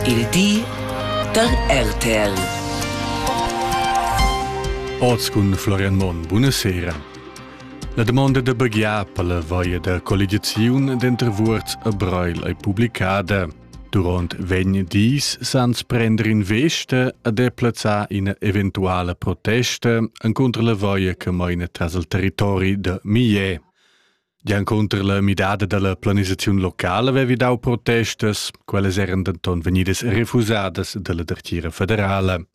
Il di da RTL. Oz cun Florian Monn, buonasera. La domanda da baghiar per la vaia da colligiaziun denter Vuorz e Breil è publicada. Durant vegn dis sans prender in veste a deplazzar ina eventuale protesta encontro la vaia che maina tras il territori de Millet. Giancunter la midada dalla planisaziun locala vevi dau protestas, quellas eran denton vegnidas refusadas dalla dertgira federala.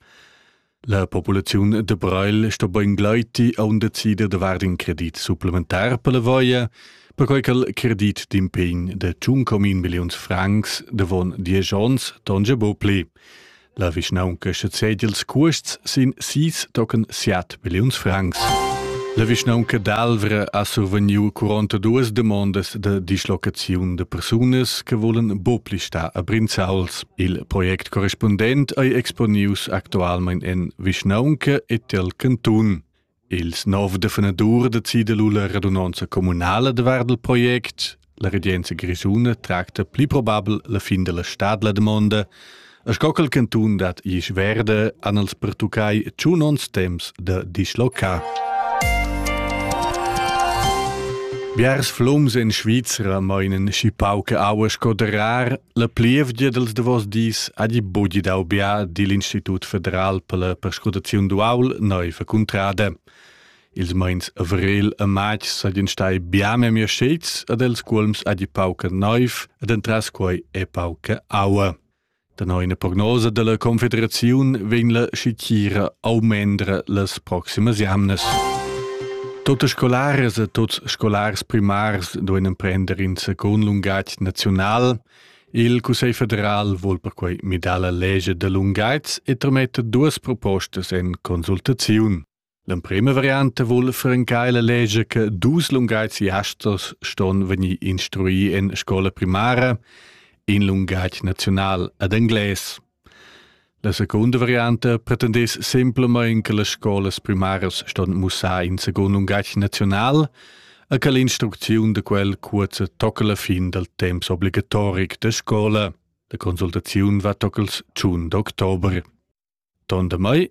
La populaziun de Breil sto bein gleiti a un decider de vard in credit supplementar per la voia, perquei che credit d'impegn de tschun comin milliuns francs devon diesch onns tonge bo pli. La vischnaunca sezedi ils cuosts sin sis tochen siat milliuns francs. La vischnaunca d'Alvra ha survegniu 42 demondas de dislocaziun de persunas che volen bopli sta a Brinzauls. Il project correspondent ei exponius actualmein en vischnaunca e tel cantun. Ils nov defenadurs decida lu la radunonza communala davart il project. La regenza grischuna tracta pli probabel la fin della stad la domanda. A sco quel cantun dat Isch Verde an els pertuccai tschun ons temps da dislocar. Biars flums in Svizzera meinen schi pauche aua sco de rar, La plievgia dals davos dis ha di bugi dau bia digl Institut federal per la perscrutaziun d'uaul neiva cuntrada. Ils meins avril e matg seigien stai bia memia schets ad els cuolms ha di pauca neiv ed entras quei è pauca aua. Da neina prognosa della Confederaziun vegn la schitira aumendra las proximas jamnas. Totes scolares e tots scolars primars doen emprender in secund lungatg naziunal. Il Cussegl federal vuol perquai midar la lege da lunghezza e trametta duas propostas en consultaziun. L'emprima variante vuol francar la lege che dus lunghezziasters ston venir instrui en scola primara, in lunghezz naziunal ad englais. La secunda varianta pretendess semplamain che las scolas primaras ston mussar in secund lungatg naziunal e che l'instrucziun da quel cuozza tocca la fin dal temps obligatoric da scola. La consultaziun va toccals tschun d'october. Ton da mai